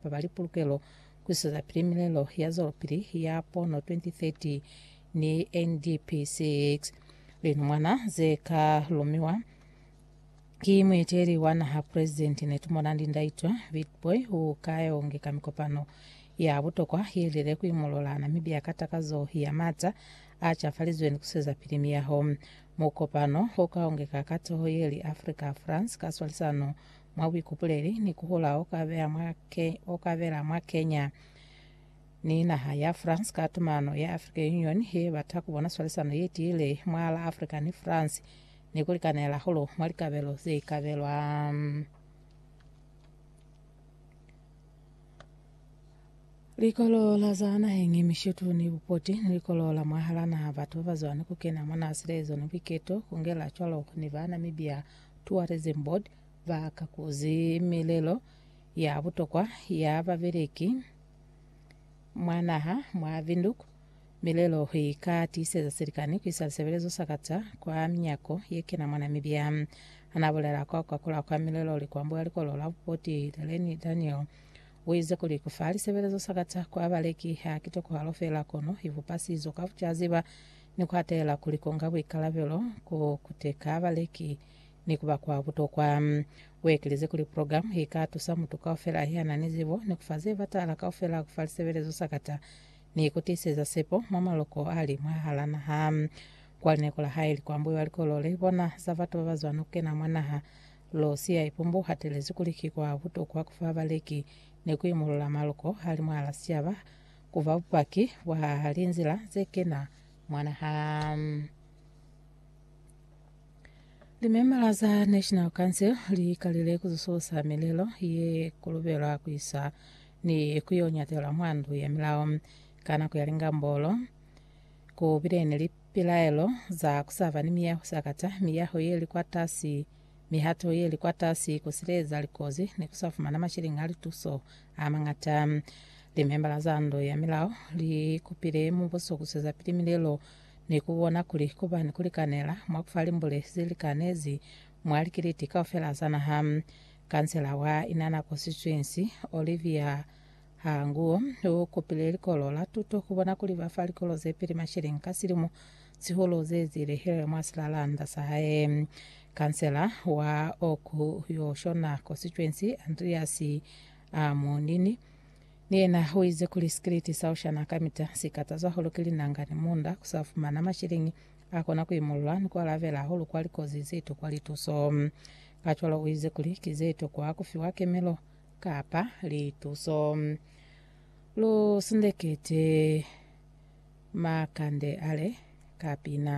ba ba li pulukelo ku isezapili milelo ya zwelopili ya pono 2030 ni NDP 6 linumwana ze ka lumiwa ki mueteli wa naha presidenti Netumorandi Ndaitwa Witbooi u ka yongeka mikopano ya butokwa ye lile ku imolola Namibia ka takazo ya mata a cafalizweni ku isezapili miyaho. Mukopano u ka yongeka ka toho ye li Africa France ka swalisano mwa buikupuleli ni kuhula o ka bela mwa Kenya ni naha ya France ka tumano ya African Union ye bata ku bona swalisano ye tiile mwa la Africa ni France ni ku likanela hulu mwa likabelo ze ikabelwa. Likolo la za naheng e mishetu ni bupoti ni likolo la mwahala naha, batu ba ba zwani ku kena mwa naha, silezo ni buiketo, ku ngela cwalo ni ba Namibia Tourism Board ba kakuzi milelo ya butokwa ya babeleki mwa naha mwa Windhoek. Milelo i ka tiiseza silikani ku isa lisebelezo sa kata kwa minyako ye kena mwa Namibia. Ha na bulela kwa ku kakulwa kwa milelo likwambo ya likolo la bupoti Leleni Daniel, u ize kuli ku fa lisebelezo sa kata kwa baleki ha ki tokohalo fela kono i bupa sizo ka ku caziba ni ku atela kuli ku nga buikalabelo ku kuteka baleki ni ku ba kwa butokwa. U ekelize kuli, Program i ka tusa mutu kaufela ya na ni zibo ni ku fa ze batala kaufela ku fa lisebelezo sakata ni ku tiiseza sepo mwa maloko a li mwahal'a naha. Kwa linako la hae li kwambuiwa likolo le bona za batu ba ba zwana ku kena mwa naha, Lucia Ipumbu u hatelezi kuli ki kwa butokwa ku fa baleki ni ku imulula maloko a li mwahal'a sicaba Ku ba bupaki bwa linzila ze kena mwa naha. Limembala za National Council li kalile ku zususa milelo ye kulubelwa ku isa ni ku yo nyatela mwa ndu ya milao. Ka nako ya lingambolo, ku bile ni lipilaelo za ku sa ba ni miyaho sakata, miyaho ye li kwatasi, Mihato ye li kwatasi ku sileza likozi ni ku sa fumana masheleñi a lituso a mañata. Limembala za ndo ya milao li kupile mubuso ku swezapili milelo ni ku bona kuli ku ba ni ku likanela mwa ku fa limbule ze likanezi mwa likiliti kaufela za naha. Kansela wa Inana Constituency, Olivia Ha Nguo u kupile likolo la tuto ku bona kuli ba fa likolo ze pili mashilingi ka silimo. Sihulu ze ezile Hillel mwa silalanda sa hae. Kansela wa oku yo shona kositwensi, Andreas Ammonini, ni yena u ize kuli sikiliti sa ushana kamita si kataza hahulu ki linanga ni munda, ku sa fumana mashilingi a kona ku imulula ni ku alabela hahulu kwa likozi ze tokwa lituso. Kacwalo u ize kuli ki ze tokwa ku fiwa kemelo kapa lituso. Lu sindekete makande ale ka pina.